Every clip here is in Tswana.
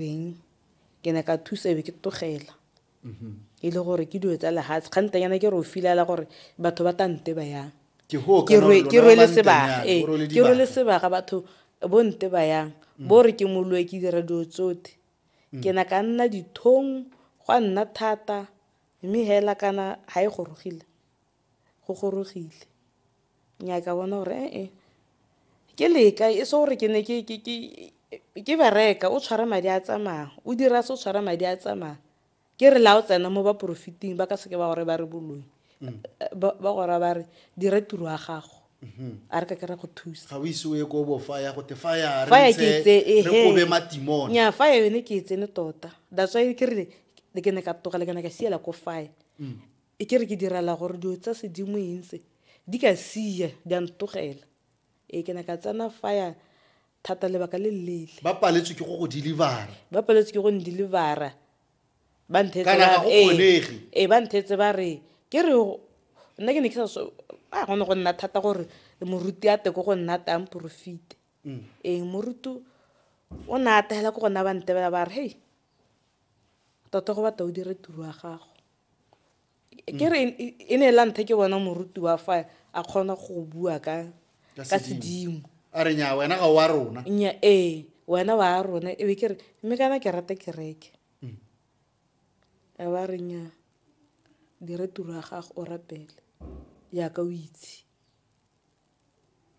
beng ke ne ka thusa ebe ke tlogela mm-hmm. e le gore ke dilo tsa lehatshe kgantanyana ke re o filela gore batho ba tante ba yang ke rwele sebaka ee ke rwele sebaka batho bo nte ba yang mm. bo re ke moloe ke dira dilo tsote mm. ke na ka nna dithong gwa nna thata mme hela kana ga e gorogile go gorogile. Nnyaa ka bona gore e-e, ke leka e se gore ke ne ke bereka o tshwara madi a tsamaya, o dira se o tshwara madi a tsamaya. Ke re la o tsena mo ba porofeting ba ka seke ba gore ba re boloi, ba gora ba re dira tiro ya gago. a re ka ke ra go thusa ga o ise o ye ko bo faya go te faya re ntse re kobe matimone nya faya yone ke e tsene tota that's why ke re ke ne ka togela ke ne ka siela ko faya E kere ke direla gore dilo tsa sedimo eng tse, di ka siya, di a ntogela. Ee, ke ne ka tsena fire thata lebaka le le leele. Ba paletswe ke go go deliver-a. Ba paletswe ke go n-deliver-a. Ba nthetse ba re. Kana ga go kgonege. Ee, ba nthetse ba re, ke re nna ke ne ke sa so, ah go ne go nna thata gore moruti a tle ko go nna a tle a mporofite. Ee, moruti o ne a ata hela ko go nna ba ntebela ba re, hei, tota go batla o dire tiro ya gago. ke re e ne la nthe ke bona moruti wa fa a kgona go bua ka ka sedimo a re nya wena ga wa rona nya ee wena wa rona e be ke re mme kana ke rata kereke mm. a ba re nya dire tiro ya gago o rapele yaka o itse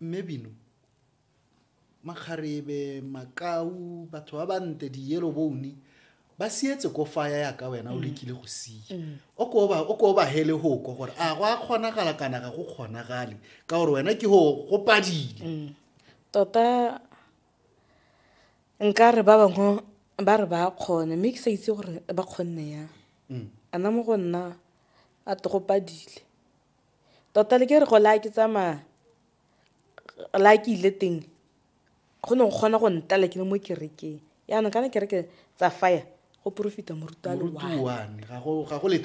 Mme Bino, makgarebe, makau, batho ba bante, di-yellow bone, ba sietse ko faya yaka wena o lekile go sia o ko ba- o ko ba hele hoko gore a go a kgonagala kana ga go kgonagale ka gore wena ke go go padile tota nka re ba bangwe ba re ba kgone mme ke sa itse gore ba kgonne yang ana mo go nna a togopadile Tota le ke re go la ke tsamaya, la ke ile teng go ne go kgona go ntala ke le mo kerekeng. Yaanong kana kereke tsa fire go porofita moruti wa one.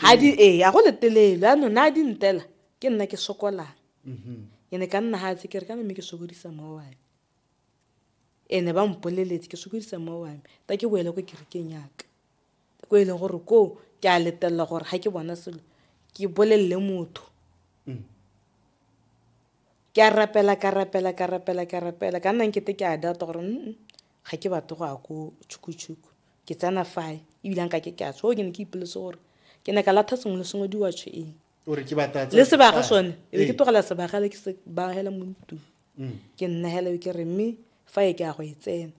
Ga di ee, ga go letelelo. Yaanong na di ntela ke nna ke sokolang. Mm-hmm. Ke ne ka nna ga tse kere kana mme ke sokodisa mma wa me. Ene ba mpoleletse ke sokodisa mma wa me. Ta ke boele ko kerekeng yaka. ko e leng gore koo ke a letelela gore ga ke bona selo ke bolelele motho mm. ke a rapela ka rapela ka rapela ka rapela ka nna nkete ke a data gore mm ga ke batle go ya ko tšhukutshuku ke tsena fae ebile nka ke ke a tsho ke ne ke ipoletse gore ke ne ka latha sengwe le sengwe diwatsho eng le sebaga sone e be ke tlogela sebagale ke se bagela mo ntlong mm. ke nnagela ke re mme fa e ke ya go e tsena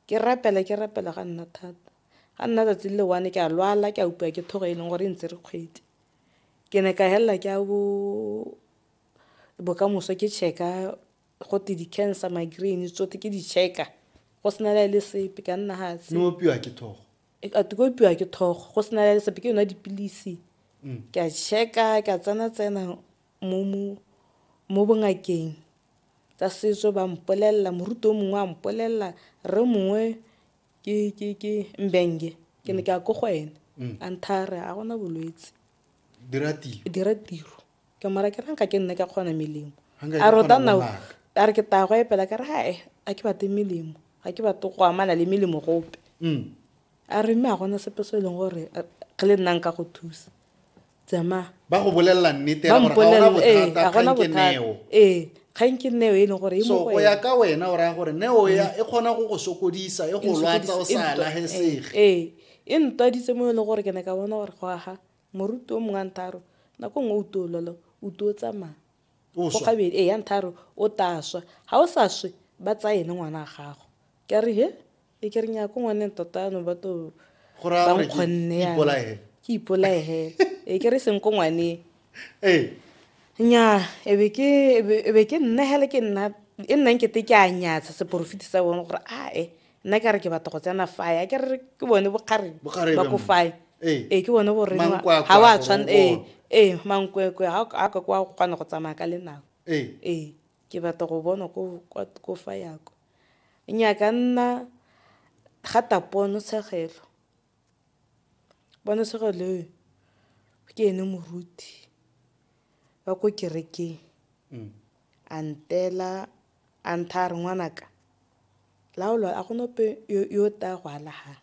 Ke rapela, ke rapela ga nna thata. Ga nna tsatsi le one ke a lwala, ke a upiwa ke thogo e leng gore e ntsere kgwedi. Ke ne ka helela ke a bo bokamoso ke check-a gote di-cancer, migraine tsotlhe ke di check-a go sena le le sepe ka nna gatse. Ne opiwa ke thogo? Ate ke opiwa ke thogo go sena le le sepe ke yona dipilisi. Ke a check-a, ke a tsena-tsena. Mo bongakeng tsa setso ba mpolelela, moruti o mongwe a mpolelela, rre mongwe ke Mbenge, ke ne ke ya ko go ene. A ntha a re ga gona bolwetse. Dira tiro. Ke mara ke ranka ke nna ka kgona melemo. A re o ta nna a re ke taya go epela ka re ga ke batle melemo, ga ke batle go amana le melemo gope. A re mme a gona sepe se e leng gore re le nnang ka go thusa tsamaya ba go bolelela nnete ba ya gore ga ona mpolelele ee bothata a gona kgang ke bothata neo ee kgang ke neo e leng gore e so mo go go ya ena. ka wena o raya gore neo ya e kgona go go sokodisa e go lwatsa o sa lagesege ee e ntwaditse mo e leng gore ke ne ka bona gore go aga moruti o mongwe a ntharo nako nngwe o tololo o tuo tsamaya O go swa. gabedi ee ya ntharo o taswa ga o sa swe ba tsaya ene ngwana a gago ke a re he E ke re nya ko ngwaneng tota ano ba to ba nkgonne ya ke ipolae he e ke re seng ko ngwaneng ee nya e be ke e be ke nna hele ke nna e nnang ke te ke a nyatsha seporofiti sa bone gore a e nna ke re ke batla go tsena fae a ke re ke bone bokgareng ba ko fae ee e, ke bone gore ga wa tshwana ee ee mankwekwe ga a ka kwa go kgona go tsamaya ka lenao ee ee ke batla go bona ko fa yako Nnyaa ka nna rata ponotshegelo. Ponotshegelo eo ke ene moruti wa ko kerekeng mm. a ntela a ntha a re ngwanaka laolo a gona ope yo o taya go alagang